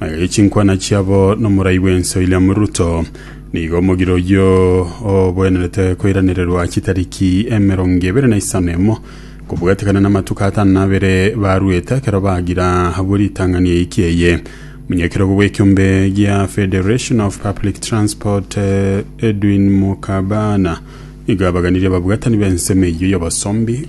Aye chinkwana chiabo nomorai bw'ense William Ruto nigo omogire oyio obwenerete koiranererwa chitariki emerongo ebere na isano emo kobwatekana namatuko atano na abere baruete ekero bagira abwo ritang'ani eiki eye omonyakerogo bw'ekiombe gia Federation of Public Transport eh, Edwin Mukabana nigo abaganirie ababwatani b'ensemo eyio y'obosombi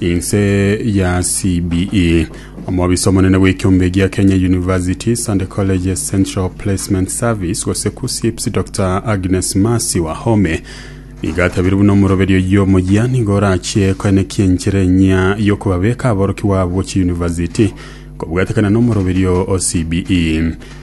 Inse ya CBE. Omobisa omonene bw'ekiombe gia Kenya Universities and Colleges Central Placement Service gose KUSSIPS Dr Agnes Masi Wahome nigo atabire buna omoroberi oyio omoyia nigo orachie koenekia enchera enyia y'okobabeka aborokigwa abwo chiuniversity kobwatekana n'omoroberio o CBE.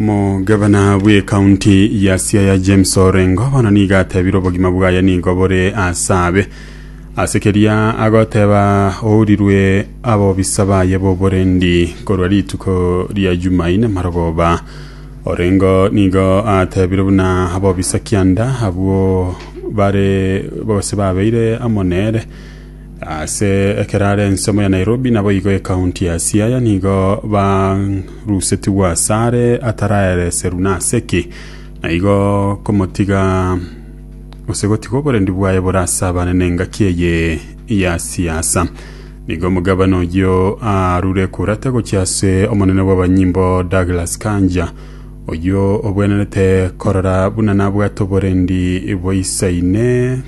Omogabana bw'ekaunti ya Siaya James Orengo bono niga atebire obogima bwaye nigo bore ase abe ase keria agoteba ourirwe abobisa baye b'oborendi korwa rituko ria Jumaine marogoba Orengo nigo atebire buna abobisa kianda abwo bare gose babeire amo nere Ase ekero are ensemo ya Nairobi naboigo ekaunti ya Siaya nigo barusetigwe asare ataraereserwa nase ki, naigo komotiga gose gotiga oborendi bwaye bore ase abane nengaki eye ya siasa. Nigo omogabana oyio arure kurata gochia ase omonene bw'abanyimbo Douglas Kanja oyio obwenerete korora buna nabwate oborendi boisaine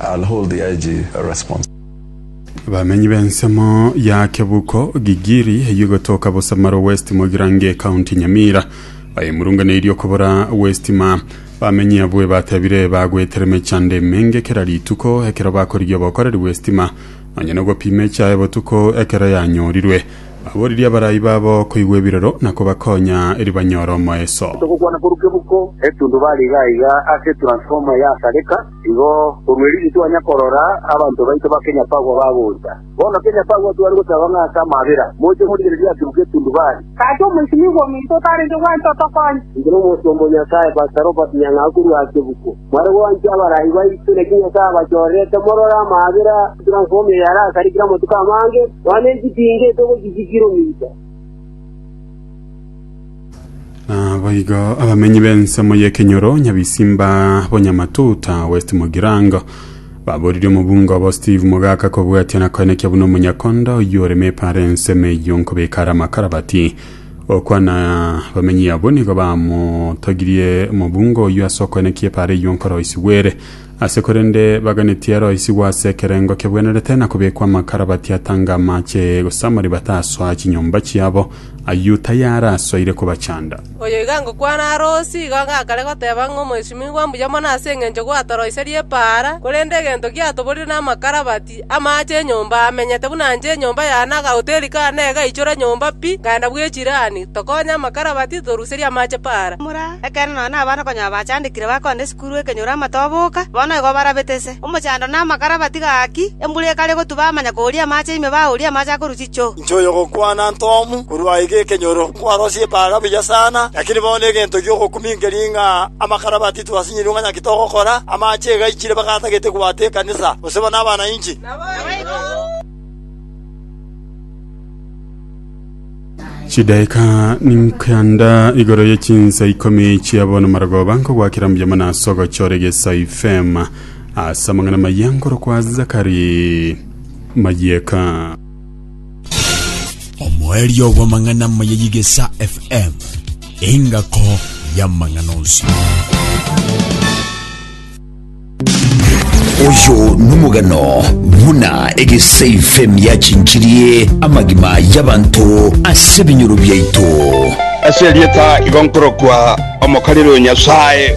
I'll hold the IG response. Abamenyi b'ensemo ya Kebuko, Gigiri, eyio egotoka Busamaro West Mogirango ecounty Nyamira, bayemurunganeirie okobora West ma bamenyi abwo ebatebire bagwetera emechando emenge kera rituko ekero bakorigia obokoreri West ma nonya nogopima echae botuko ekero yanyorirwe. Baboririe abarai babo koigwa ebirero na kobakonya eri banyore omoeso. Togokwana korwa Kebuko, etundubaare iga iga ase etransformer yasareka. Igo korwa erinde twanya korora abanto baito ba Kenyapagwa bagoncha. Bono Kenyapagwa tware gosaba ng'a ase amaabera moche morigererie ase Buketundubari. Gaki omoisimigwa ominto otarenge gwancha otokonye. Inche na omosomba o Nyasae, Pastor Robert Nyang'au korwa Asebuko, mware gwancha abarai baito, naki Nyasae abachorerete morore amaabera transform eye are ase arikire amatuko amange, nonya ne echitinga etogochisikire ominto. Naboigo abamenyi b'ensemo y'ekenyoro Nyabisimba Bonyamatuta West Mugirango baboririe omobunga obo Steve Mogaka kobwatia na koenekia buna omonyakonda oyio ore mepara ensemo eyio nkobeka are amakarabati okwana bamenyi abwo nigo bamotogirie omobunga oyio ase okoenekia epara eyio nkoroisigwere Ase korende baganetie aroisigwe ase ekerengo kebwenerete na kobekwa amakara batie atange amache, gose amari batasoa chinyomba chiabo, ayio tayarasoire kobachanda. Oyo iga ngokwana are osi, igo gakare goteba ng'a omoesimigwa mbuya mono ase engencho gwatoroiserie epaara, korende egento giatoborire namakara batie. Amaache enyomba amenyete buna nche enyomba yane na agahoteri kane egaichora nyomba pi, nkaenda bw'echirani, tokonye amakarabati, toruserie amaache paara. Ekeene nonya nabana konya abachandekire bakonda esukuru ekenyoro amatoboka, bono igo barabete ise. Omochando na amakarabati gaaki, embura ekare gotuba amanya kooria amaache ime baooria amaache akorwa chichoo. Inche oyogokwana Ntomu korwa aiga ekenyoro, nkwarosie epaara buya sana, lakini bono egento giogokuminkeria ng'a amakarabati. Tibasinyirigwe ng'a naki togokora amache egaichire bagatagete kobwata ekanisa, gose buna abana inche. Chidaeka ninkenda igoro ye chinsa ikomi chia bono marogoba nkogwakera mbuya mono ase ogochora egeso FM ase amang'ana maya nkorokwa Zakari Mayeka. omoerio bw'amang'ana amaya y'Igesa FM, engako y'amang'ana onsi. oyo nomogano buna egesafem yachinchirie amagima y'abanto ase ebinyoro biaito ase erieta igo nkorokwa omokariri o Nyasae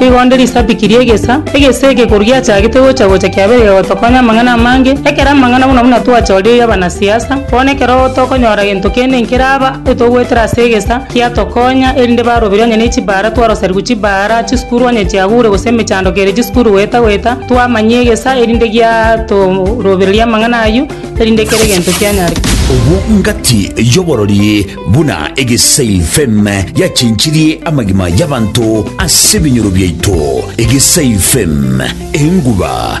Nigo nde risadiki ri'egesa, egesa eke koru giachagete gocha-gocha kiabeire gegotokonya amang'ana amange, ekero amang'ana buna buna twachoririe abanasiasa, bono ekero gotokonyora gento kende nkeraba etogoetera ase egesa, kiatokonya, erinde baroberi onye ne chibaara twaroserigwe chibaara, chisukuru onye chiagure gose emechando kere chisukuru goeta-goeta, twamanyia egesa erinde giatorobereria amang'ana ayio, erinde kere gento kianyare. Obwo ngati y'oborori. Buna egesail fame yachinchirie amagima y'abanto ase ebinyoro biaito, egesail fame, enguba,